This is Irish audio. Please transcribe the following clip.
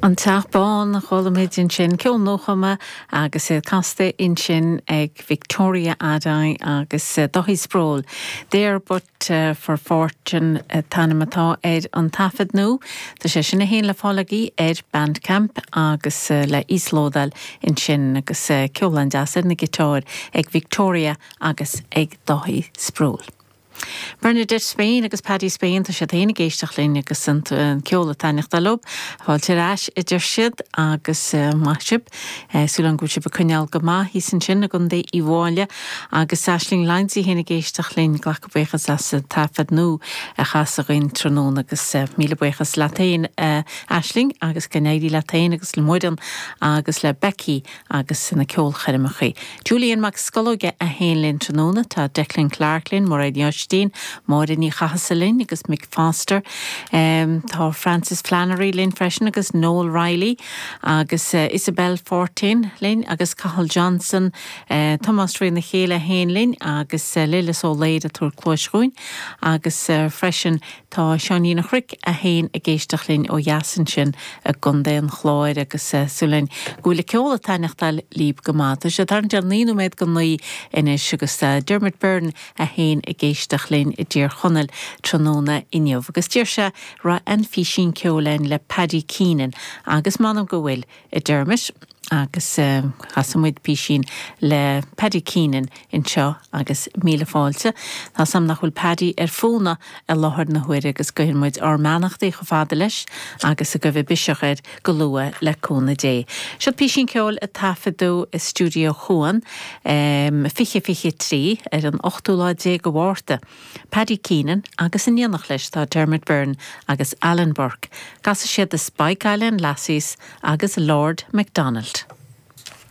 An Teach Bán, chuala muid ansin ceol nuachumtha agus é casta ansin ag Victoria Adiiye agus Daithí Sproule. There but for Fortune an t-ainm atá ar an taifead nua. Tá sé sin é féin le fáil agaibh ar Bandcamp agus le híoslódáil ansin agus ceol an-deas ar na giotáir ag Victoria agus ag Daithí Sproule. Bernadette Spain agus Paddy Spain, tá siad féin ag éisteacht linn agus an ceol ag taitneachtáil leo. Fáilte ar ais, a deir siad, agus maith sibh. Súil againn go bhfuil sibh ag coinneáil go maith thíos ansin i gContae Uíbh Fhailí. Agus Aisling Lyons í féin ag éisteacht linn. Ag glacadh buíochas as an taifead nua a chasadh againn tráthnóna agus míle buíochas leat féin, Aisling, agus go n-éirí leat féin agus le Muireann agus le Becky agus na ceolchoirmeacha. Julian Mac Scolóige é féin linn tráthnóna, tá Declan Clarke linn, Máire Ní Oistín, Máire Ní Chathasaigh linn agus Mick Foster. Tá Frances Flannery linn freisin agus Noel Reilly agus Isabelle Fortén linn agus Cathal Johnson, Tomás Rí na Céille é féin linn agus Lillis Ó Laoire ag tabhairt cluais dhúinn agus freisin Tá Seáinín a' Chnoic é féin ag éisteacht linn ó dheas ansin i gContae an Chláir agus súil againn go bhfuil an ceol ag taitneachtáil libh go maith. Tá sé ag tarraingt ar naoi nóiméad go naoi anois agus tá Dermot Byrne é féin ag éisteacht linn i dTír Chonaill tráthnóna inniu agus d'iarr sé an raibh aon phísín ceoil ann le Paddy Keenan agus m'anam go bhfuil a Dermot agus casfaidh muid písín le Paddy Keenan anseo agus míle fáilte. Tá a fhios agam nach bhfuil Paddy ar fónamh i láthair na huaire agus guíonn muid ár mbeannachtaí chomh fada leis agus go dtaga biseach air go luath le cúnamh Dé. Seo písín ceoil a taifeadadh i Stiúideó Chuan 20, 23 ar an ochtú lá déag de Mhárta. Paddy Keenan agus in éineacht leis tá Dermot Byrne agus Alan Burke. Casfaidh siad The Spike Island Lassies agus Lord McDonald.